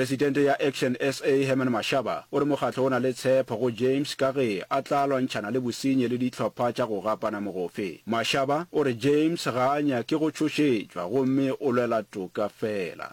Presidente ya Action SA, Herman Mashaba, o re mokgatlo o na le tshepho go James ka ge a tla lwantšhana le bosenyi le dihlopha tša go gapana mogofe. Mashaba o re James ga a nyake go tšhošetšwa gomme o lwela toka feela.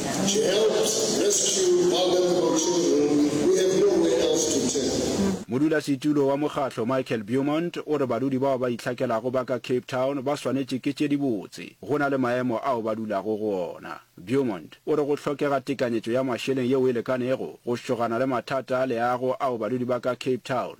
To help rescue vulnerable children, we have nowhere else to turn. Modulasetulo wa mokgatlo Michael Beaumont o re badudi bao ba itlhakelago ba ka Cape Town ba swanetše ke tše dibotse go na le maemo ao ba dulago go ona. Beaumont o re go hlokega tekanyetšo ya mašeleng yeo e lekanego go šogana le mathata a leago ao badudi ba ka Cape Town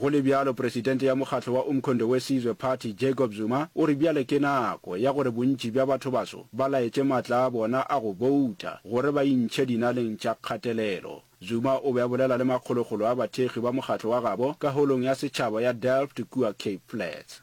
Go le bjalo, presidente ya mokgatlo wa Umkhonto we Sizwe Party, Jacob Zuma, o re bjale ke nako ya gore bontši bja bathobaso ba laetše matla a bona a go bouta gore ba intšhe dinaleng tša kgatelelo. Zuma o be a bolela le makgolokgolo a bathekgi ba mokgatlo wa gabo ka Holong ya Setšhaba ya Delft kua Cape Flats.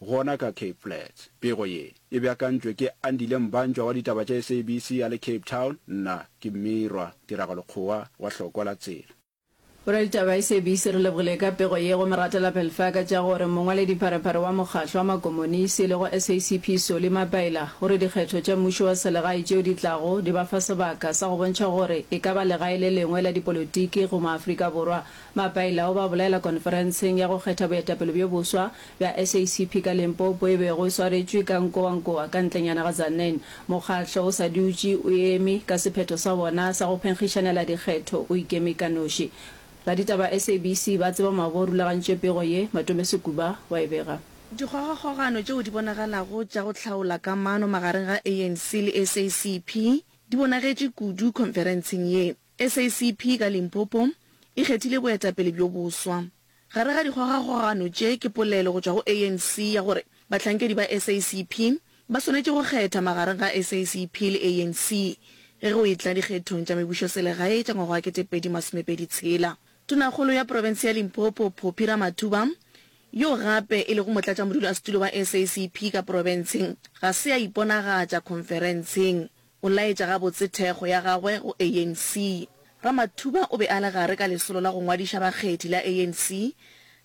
Gona ka Cape Flats. Pego ye, e beakantšwe ke Andile Mbanjwa wa ditaba tša SABC a le Cape Town, nna ke Mmirwa Tiragalo Kgowa wa Hlokwa la Tsela. Boraditaba ba SABC re lebogile ka pego ye go moratelapelfa ka tša gore mongwaledipharephare wa mokgatlo wa makomonisi e lego SACP Solly Mapaila o re dikgetho tša mmušo wa selegae tšeo di tlago di ba fa sebaka sa go bontšha gore e ka ba legae le lengwe la dipolotiki go Maafrika Borwa. Mapaila o ba bolaela konferenseng ya go kgetha boetapele bjo boswa ya SACP ka Limpopo e bego e swaretšwe ka Nkowankowa ka ntlenyana ga Tzaneen. Mokgahlo o sa dutše o eme ka sephetho sa wona sa go phenkgišanela dikgetho o ikeme ka noši. Raditaba SABC ba tseba mabo rulagantše pego ye, Matome Sekuba wa e bega. Dikgogakgogano tšeo di bonagalago tša go hlaola kamano magareng ga ANC le SACP di bonagetše kudu khonferentseng ye. SACP ka Limpopo e kgethile boetapele bjo boswa. Gare ga dikgogakgogano tše ke polelo go tšwa go ANC ya gore bahlankedi ba SACP ba swanetše go kgetha magareng ga SACP le ANC ge go e tla dikgethong tša mebušoselegae tša ngwaga wa kete pedi masome pedi tshela. Tonakgolo ya profense ya Limpopo Phophi Ramathuba, yo gape e lego motlatšamodulasetulo wa SACP ka profenseng, ga se a iponagatša khonferenseng. O laetša gabotse thekgo ya gagwe go ANC. Ramathuba o be a le gare ka lesolo la go ngwadiša bakgethi la ANC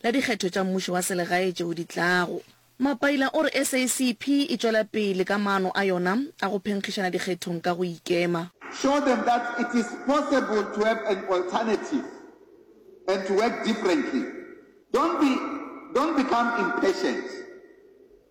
la dikgetho tša mmušo wa selegae tšeo di tlago. Mapaila o re SACP e tšwela pele ka maano a yona a go phenkgišana dikgethong ka go ikema. Show them that it is possible to have an alternative and to work differently. Don't be, don't become impatient.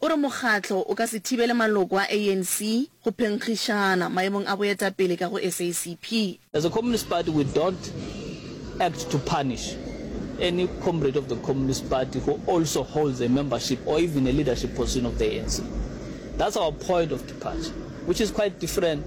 O re mokgatlo o ka se thibele maloko a ANC go phenkgišana maemong a boetapele ka go SACP. As a Communist Party we don't act to punish any comrade of the Communist Party who also holds a membership or even a leadership position of the ANC. That's our point of departure which is quite different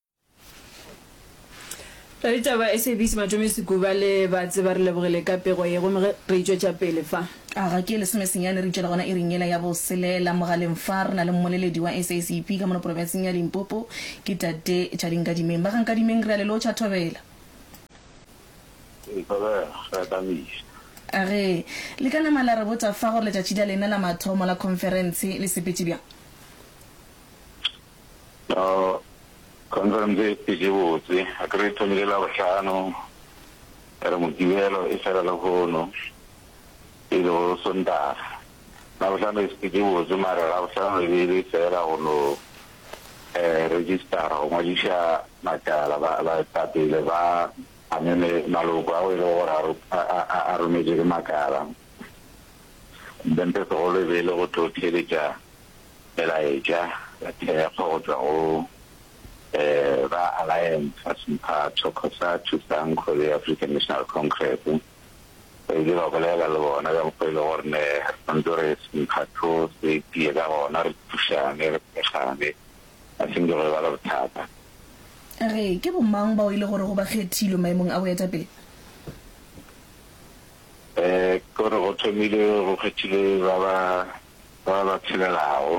Ra ditaba SABC Matome Sekuba le Batse ba re lebogile ka pego ye gomme ge re itšwetša pele fa. A ga ke lesomesenyane re itšwela gona iring yela ya boselela. Mogaleng fa re na le mmoleledi wa SACP ka mono porofenseng ya Limpopo ke Tate Tšali Nkadimeng. Ba ga Nkadimeng re a le lotšha thobela. Thobela re a tamisa. A ge le ka nama la re botša fa gore letšatši la lena la mathomo la khonferentshe le sepetše bjang? Now conference e šetše botse, akere e thomile Labohlano, ya re Mokibelo e fela lehono, e lego Sontaga. Labohlano e šetše botse mare Labohlano e be e le fela go no registera, go ngwadiša matala, baetapele ba ameme maloko ao e lego gore a rometšwe ke makala. Then se segolo e be e le go tlo theeletša Melaetša ya thekgo go tšwa go ba Alliance ga se mphato, Cosatu, Sanco le African National Congress. Re ile ra bolela le bona ka mokgwa e le gore ne re swantse re se mphato se tie ka gona, re thušane, re thekgane, a se nke go eba le bothata. A re ke bomang bao e le gorego ba kgethilwe maemong a boetapele? Ke gore go thomile go kgethilwe ba ba ba ba phelelago,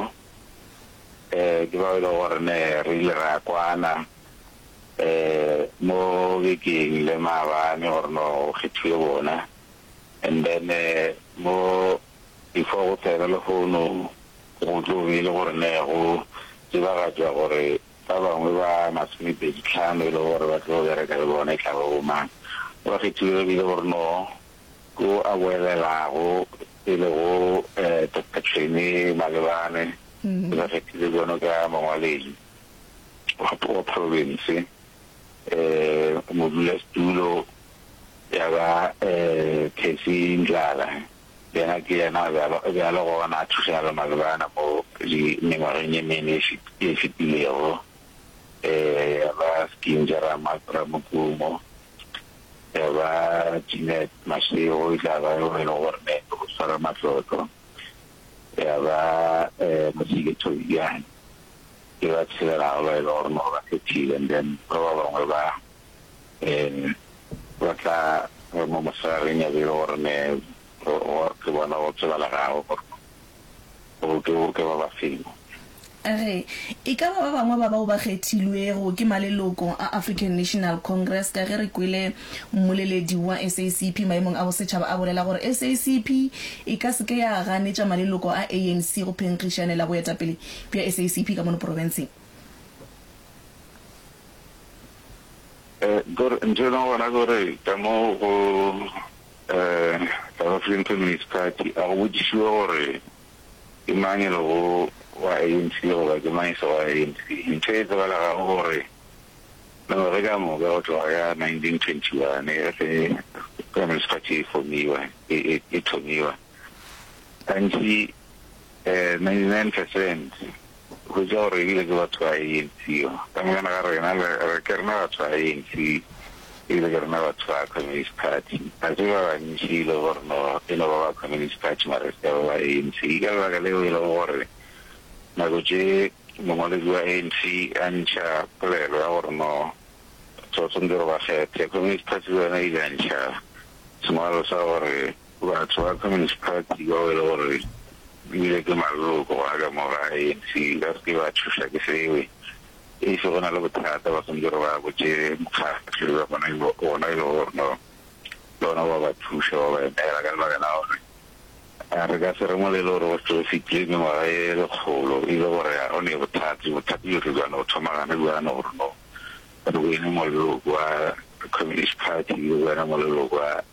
um ke bao e lego gore ne re ile ra kwana um mo bekeng le maabane gore no go kgethiwe bona. And then mo before go tsena lehono go tlo be e le gore ne go tsebagatšwa gore ba bangwe ba masomepedi tlhano e lego gore ba tlo bereka le bona e tla ba bo mang. Ba kgethiwe e bile gore no yo a boelelago e lego Doctor Tshweni Malebane, ke ba kgethile bjalo ka mongwaledi wa province, modulasetulo ya ba Cathy Ndlala, yena ke yena a bjalo gona a thušana le Malebane mo mengwageng ye mene e fetilego, ya ba Skinja Ramokumo, ya ba Jeanette Mashego e tla ba yo e le gore ne o tshwara matlotlo ya ba um Mosike Thobiyane ke ba tshelelago ba e le gore mo ba kgethile and then ba ba bangwe ba um ba tla mo mosegageng ya be e le gore ne ke bona go tsebalegago gore gore o tle o roke ba ba seno. A re, E ka ba ba bangwe ba bao ba kgethilwego ke maleloko a African National Congress ka ge re kwele mmoleledi wa SACP maemong a bosetšhaba a bolela gore SACP e ka se ke ya ganetša maleloko a ANC go phenkgišanela boetapele bja SACP ka mono porofenseng. Ntho e leng gona ke gore ka mo go. South African Communist Party, a go botšišiwe gore ke mang e lego wa ANC goba ke mang e se wa ANC. Ntho e tsebalegago ke gore mengwaga e ka moka go tloga ka 1921 ge Communist Party e fomiwa, e thomiwa, gantši 99 percent Hwetša gore re bile ke batho ba ANC, ka moka na ga rena le, re, ke rena batho ba ANC ebile ke rena batho ba Communist Party. Ga se ba bantši e lego gore no, e no ba ba Communist Party mara e se ka ba ba ANC. Ke ka lebaka leo e lego gore nako tše mongwaledi wa ANC a ntšha polelo ya gore no, batho ba swanetše gore ba kgethe, Communist Party le yona e ile ya ntšha sengwalo sa gore Batho ba Communist Party bao e le gore ebile ke maloko gona ka mo ga ANC ba se ke ba thuša ke sebe. E se go na le bothata ba swanetše gore ba botše mokgatlo wa bona wona e le gore no ke wona wa ba thuša wa ba emela ka lebaka la gore a re ka se re molelo gore go tlo fitlile mengwaga e lekgolo e le gore ga go ne bothata bothata bjo re bjano go thoma gane bjano gore no re wene moleloko wa Communist Party le wena moleloko wa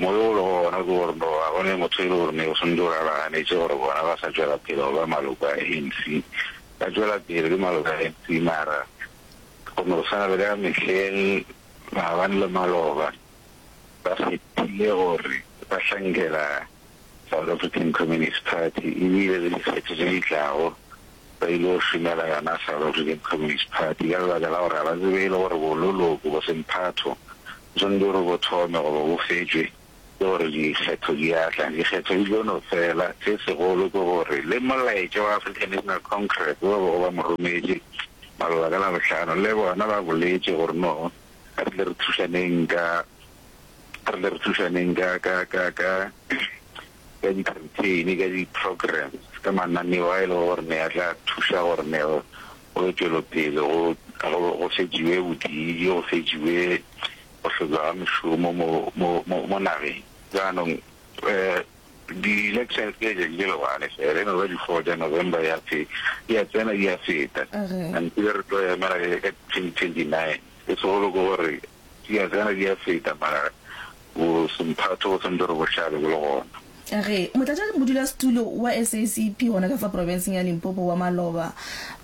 Moya o lego gona ke gore no ga go ne motho e le gore ne o swantse gore a ba ganetše gore bona ba sa tšwela pele go ba maloko a ANC. Ba tšwela pele e le maloko a ANC mara go no swana le ka mehleng maabane le maloba ba fetile gore ba hlankela South African Communist Party, e bile le dikgetho tše di tlago ba ile go šomela yona South African Communist Party ka lebaka la gore ga ba tsebe e le gore bololoko bo semphatho bo swanetše gore bo thome goba bo fetšwe ke gore dikgetho di a tla. Dikgetho di tlo no fela, se segolo ke gore le molaetša wa African National Congress wo ba bego ba mo rometše maloba ka Labohlano le bona ba boletše gore no ga re tle re thušaneng ka re tle re thušaneng ka ka ka ka ka di-campaign ka di-programs ka mananeo a e lego gore ne a tla thuša gore ne go tšwelopele go fetšiwe bodidi go fetšiwe go hlotšwa ga mešomo mo nageng jaanong um di-elections ke letšatši le legwane fela eno ba di-four ja november ya ya tsena di ya feta until re tlo emela ka twenty twenty nine e segolo ke gore Di a tsena di a feta mara bosemphato bo santse re bo hlabe bo le gona. A re Motlatšamodulasetulo wa SACP gona ka fa porofenseng ya Limpopo wa maloba,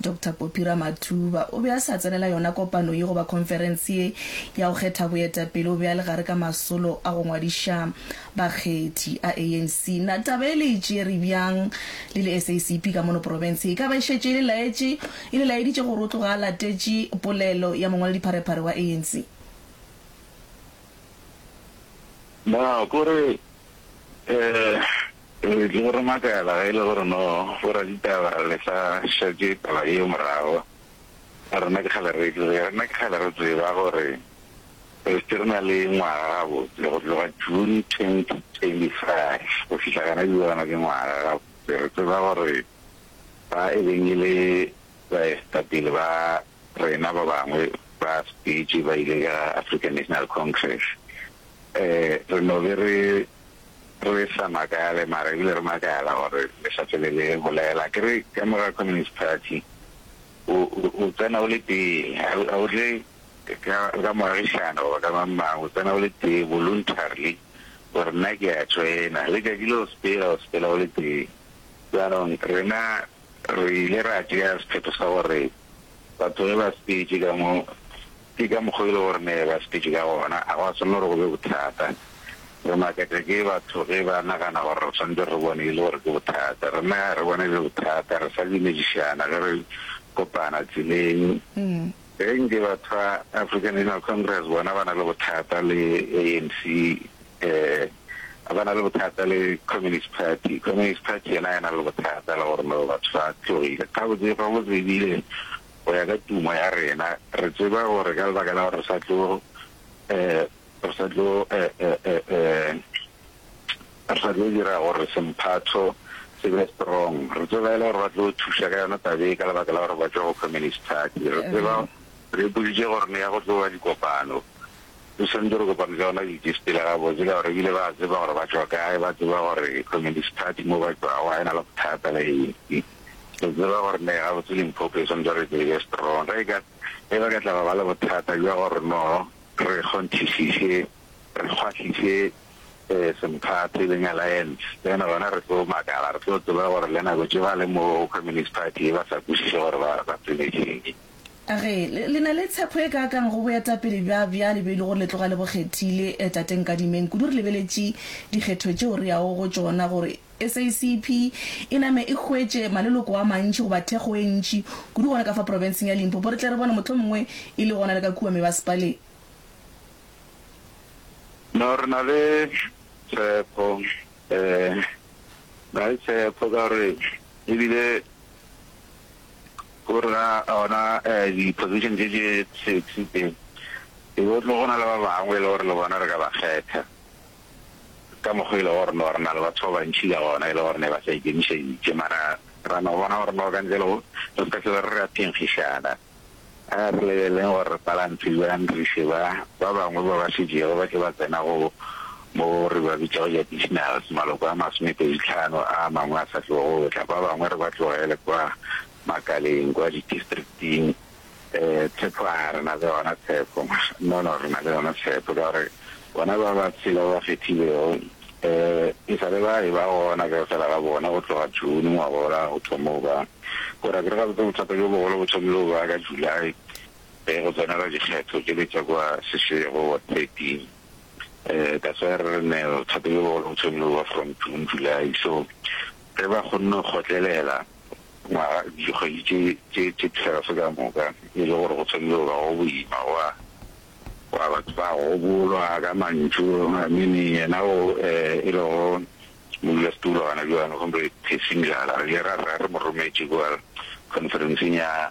Doctor Poppy Ramathuba o be a sa tsenela yona kopano ye goba khonferense ye ya go kgetha boetapele o be a le gare ka masolo a go ngwadiša bakgethi a ANC. Na taba e le e tšere bjang le le SACP ka mono porofenseng? E ka ba e šetše e le laetše e le laeditše gore o tloga a latetše polelo ya mongwaladipharephare wa ANC. Na ko re, Ee, re tlo re makala ge e le gore no boraditaba le sa šetše taba yeo morago. Rena ke kgale re e tseba, rena ke kgale re tseba gore re šetše re na le ngwaga gabotse, go tloga June 2025 go fihla gona bjale, ke ngwaga gabotse re tseba gore. ba e beng e le baetapele ba rena ba bangwe ba sepetše ba ile ka African National Congress. Re no be re re sa makale, mara ebile re makala gore le sa fele le bolela. Ke re ka morago Communist Party o tsena o le tee, ga o tle ka moagišano goba ka mang-mang, o tsena o le tee voluntarily gore nna ke a joina. Letšatši le o sepela, o sepela o le tee. Jaanong rena re ile ra tšea sephetho sa gore batho ge ba sepetše ka mo, ke ka mokgwa e le gore ne ba sepetše ka gona, a go a swanela gore go be bothata. Re makatša ke batho ge ba nagana gore re swanetše re bone e le gore ke bothata. Rena ga re bone e le bothata, re sa dumešišana ge re kopana tseleng. Ge nke batho ba African National Congress bona ba na le bothata le ANC, eh, ba na le bothata le Communist Party, Communist Party yena ha e na le bothata le gore no batho ba tlogile. Gabotse, gabotse ebile go ya ka tumo ya rena, re tseba gore ka lebaka la gore re sa tlo, eh, re sa tlo re sa tlo dira gore semphatho se be strong re tseba e le gore ba tlo thuša ka yona tabe ka lebaka la gore ba tswa go communist party re tseba re ipoditse gore ne ya go tloga dikopano re santse re kopane ka yona di-dispy le gabotse ka gore ebile ba tseba gore ba tswa kae ba tseba gore communist party mo ba tswago ga e na le bothata le eng re tseba gore ne gabotse limphopo e santse re tsebe strong re ka e ba ka tlaba ba le bothata jwa gore no Re kgonthišiše, re kgwahliše semphate le Nyalaense, then gona re tlo makala, re tlo tseba gore le nako tše ba le mo Communist Party ba sa kwešiše gore ba, ba tsenetše'ng. A re, Le, le na le tshepo e kaaka'ng go boetapele bja, bjale bjo e le gore le tloga le bo kgethile, Tate Nkadimeng, kudu re lebeletše dikgetho tšeo re yago go tšona gore, SACP e name e hwetše maleloko a mantši goba thekgo e ntši kudu gona ka fa profenseng ya Limpopo, re tle re bone mohlomongwe e le gona le ka kua mebasepaleng. No, re na le tshepo, ee, re na le tshepo ka gore e bile go rena ona di-position tše tše sexy tše, e be go tlo go na le ba bangwe e le gore le bona re ka ba kgetha. ka mokgo e le gore no re na le batho ba bantši ka gona e le gore ne ba sa ikemišeditše, mara ra no bona gore no ka ntle le go re se ka hlwela re ra phenkgišana. A re lebeleleng gore re palantse bjang re iše ba ba bangwe ba ba šetšego ba tle ba tsena go mo re ba bitšago di-additionals, maloko a masomepeditlhano a mangwe a sa tlego go tla, ba bangwe re ba tlogele kwa makaleng, kwa di-districting. Ee, Tshepo a re na le yona tshepo. No, no, re na le yona tshepo ka gore bona ba ba tshela ba ba kgethilego um e sa le ba e ba gona ka fela ga bona go tloga June ngwaga ola o thoma go ba gore ke re gabotse bothata bjo bogolo bo thomile go ba ka July um go tsenela dikgetho tše le tša kwa Seshego wa thirteen um that's why re re ne bothata bjo bogolo bo thomile go ba from June, July so ge ba kgonne go kgotlelela ngwaga, dikgwedi tše, tše, tše twelve ka moka, e le gore go tshwanile go ba go boima, gwa, gwa batho ba gobolwa ka mantšu, I mean, yena o, eh, e lego modulasetulo gona bjalo, Comrade Percy Mdlala, re ile ra, ra, re mo rometše kua conference-eng ya.